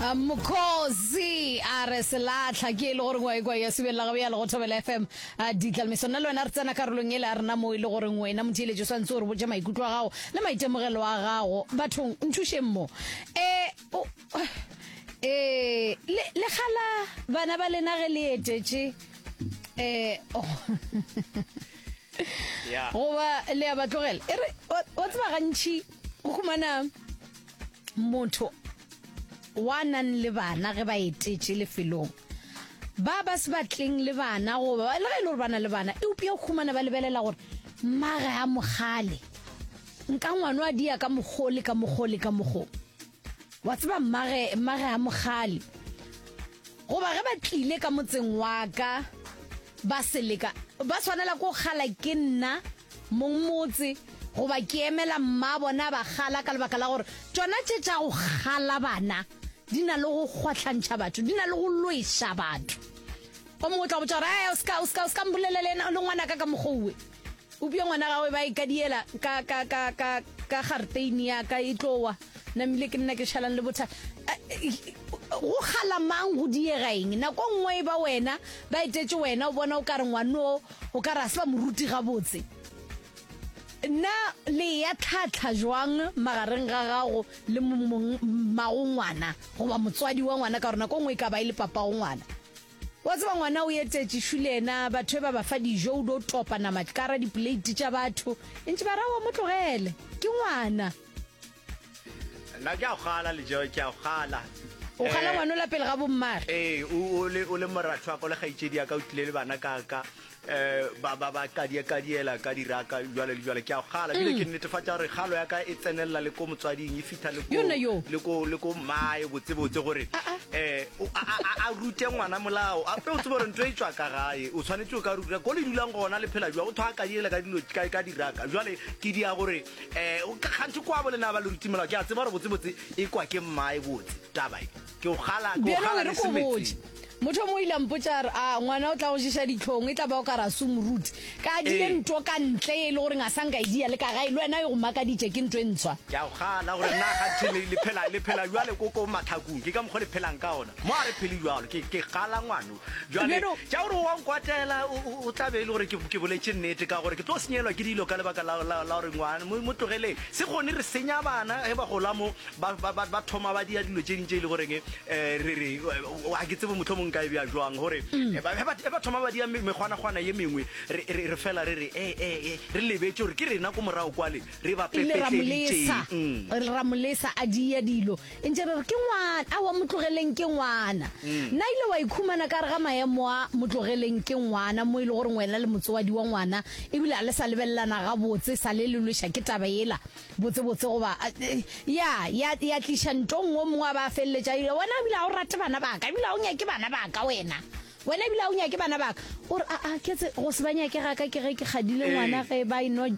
A mokhosi a re selatlha ke e le goreng wa ekwa ya subelela gabo ya lego thobela fm a ditlalmiso nna le wena re tsena karolong ele a rena moo e le goreng wena motheeletši o swantse o re botša maikutlo a gago le maitemogelo a gago bathong nthušeng mo e o e le le kgala bana ba lena ge le etetše e oh. Yeah. goba le ya ba tlogela e re wa wa tseba gantši go humana motho wa nang le bana ge ba etetše lefelong ba ba se batleng le bana goba le ge e le gore ba na le bana eupša o humana ba lebelela gore mmage a mogale nka ngwano a dia ka mokgole ka mokgole ka mokgong wa tseba mmage mmage a mogale goba ge ba tlile ka motseng wa ka ba seleka ba tshwanela ko gala ke nna mong motse goba ke emela mma bona ba gala ka lebaka la gore tsona tše tša go gala bana di na le go kgwatlhantšha batho di na le go lweša batho o mongwe o tla botsa gore o ska mbolelele le ngwanaka ka mokgouwe Upša ngwana gawe ba e kadiela ka, ka, ka, ka, ka garteini ya ka e tlo wa. Namile ke nna ke šalang le botha. Go kgala mang go diega eng? Nako nngwe e ba wena, ba etetše wena, o bona o ka re ngwano o ka re a se ba moruti gabotse. Na le ya tlhatlha jwang magareng ga gago le mongmagongwana goba motswadi wa ngwana ka gore nako nngwe e ka ba e le papagongwana? Wa tseba ngwana o etetše šu le yena batho e ba ba fa dijo o do topa nama tlkara dipoleiti tša batho e ntše ba ra wa mo tlogele ke ngwana Nna ke a go gala le Joe, ke a go gala. o gala Eh, ngwana o la pele ga bommare Ee, o, o le, o le moratho wa ka, o le kgaitšedi ya ka, o tlile le bana ka ka. um ba ba ba kadiekadiela ka diraka jwale le jwale ke a go kgala bile mm. ke netefatša gore kgalo ya ka e tsenelela le ko motswading e fitha le ko mmae botsebotse gore um a rute ngwana molao ape o tsebo gore nto e tswa ka gae o tshwanetse o ka ruta ko le dulang gona le phela jwa go thwa kadiela ka dilo ka diraka jwale ke dia gore um gantsi kwa bolenaba le ruti molao ke a tseba gore botsebotse e kwa ke mmae botse tabae Ke o kgala, ke o Bjalo kgala e re ko meetse. botše motho mo ile a mpotša a re a ngwana o tla go ješa ditlhong e tla ba o ka ra sumruti ka dile Ee. nto ka ntle e le gore ga sa nka e dia le ka gae le wena e go makaditše ke nto e ntshwa Ke a o kgala gore na ganthe le, le phela le phela jwale ko ko matlhakong ke ka mokgwa le phelang ka ona mo a re phele jwalo ke ke kgala ngwano jale ja gore wa nkwatela o tla be e le gore ke boletse nnete ka gore ke tlo senyelwa ke dilo ka lebaka la gore ngwana mo tlogeleng se kgone re senya bana ge ba gola mo ba thoma ba dia dilo tse ding tse e le goreng um eh, re re ga ke tsebo motlho mongwe ka e bja jwang gore mm. eh, eh, ba thoma ba dia mekgwanakgwana ye mengwe re fela re re ee re lebetse gore ke rena ko morago kwale re ba pepetlelitseng mm. ramolesa a dia dilo e ntše re re ke ngwana awa motlogeleng ke ngwana mm. na ile wa ikhumana ka re ga maemo a motlogeleng ke ngwana mo e le gore ngwena le motsoadi wa ngwana ebile a le sa lebelelana ga botse sa le lelweša ke taba ela botsebotse goba eh, ya ya ya tliša ntong o mongwe a ba feleletša wena ebile ga o rate bana baka ebile ga o nyake bana baka wena wena ebile ga o nyake bana baka ore aa ketse go se ba nyake ga ka ke ge ke kgadile ngwana ge ba eno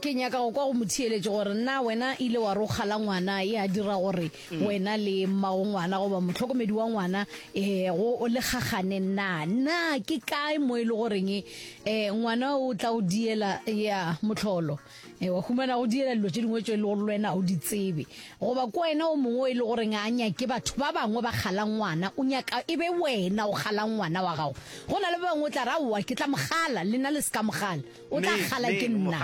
Ke nyaka go kwa go motheeletši gore na wena ile wa rokga la ngwana e a dira gore mm. wena le mmago ngwana goba motlhokomedi wa ngwana um go o le gagane na na ke kae mo e le goreng um ngwana o tla o diela ya motlholo um wa humana go diela dilo tse dingwe tso e le gore le wena o di tsebe goba ko wena o mongwe o e le goreng a nyake batho ba bangwe ba kgala ngwana o nyaka e be wena o kgala ngwana wa gago go na le ba bangwe o tla ra owa ke tla mogala le na le se ka mogala o tla kgala ke nna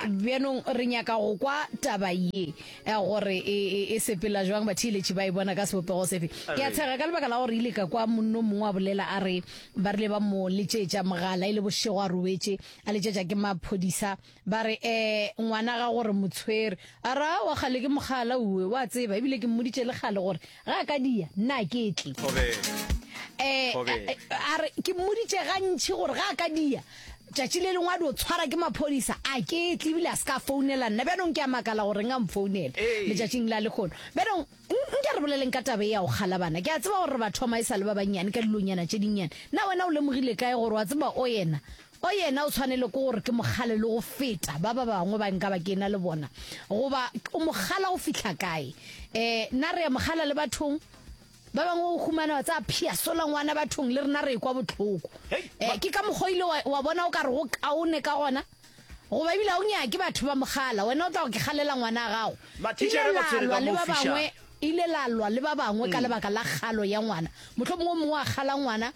um bjanong re nyaka go kwa taba ye um gore e, e, e sepela jwang batheeletši ba e bona ka sebopego sefe ke a tshega ka lebaka la gore ile ka kwa monno mongwe a bolela a re ba rile ba mo letšetša mogala e le bošego a robetše a letšetša ke maphodisa ba re um ngwana ga gore motshwere a ra wa kgale ke mogala uwe wa tseba ebile ke mmoditše le kgale gore Ga a ka dia, nna a ke tle. Eh, eh, a re, ke mmoditše gantši gore ga a ka dia, tšatši le lengwe a dio tshwara ke maphodisa, a ke tle ebile a se ka founela nna. Bjanong ke a makala gore reng a mfounela letšatšing la lekgono. Bjanong, nke re boleleng ka tabe ya go kgala bana. Ke a tseba gore re ba thoma e sa le ba bannyane ka dilonyana tše dinnyane. Na wena o lemogile kae gore wa tseba o yena Go yena o tshwanelo ke gore ke mo kgale le go feta ba ba bangwe ba nka ba ke ena le bona. Goba o mo kgala go fihla kae? Um na re a mo kgala le bathong? Ba bangwe o humana wa tsaya phiasola ngwana bathong le rena re kwa botlhoko. Um ke ka mokgwa ile wa bona o ka re go kaone ka gona? Goba ebile a o nyake batho ba mogala, wena o tla go ke kgalela ngwana a gago. Ile lalwa le ba bangwe ile lalwa le ba bangwe ka mm. lebaka la kgalo ya ngwana mohlomongwe mongwe a kgala ngwana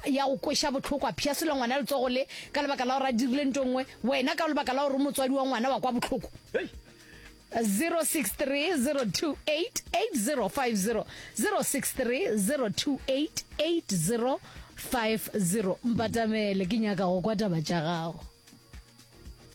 ya go kweša bohloko, a phiyasela ngwana letsogo le ka lebaka la gore a dirile nto nngwe, wena ka lebaka la gore o motswadi wa ngwana wa kwa bohloko. 063 028 8050 063 028 8050 mpatamele ke nyaka go kwa taba tša gago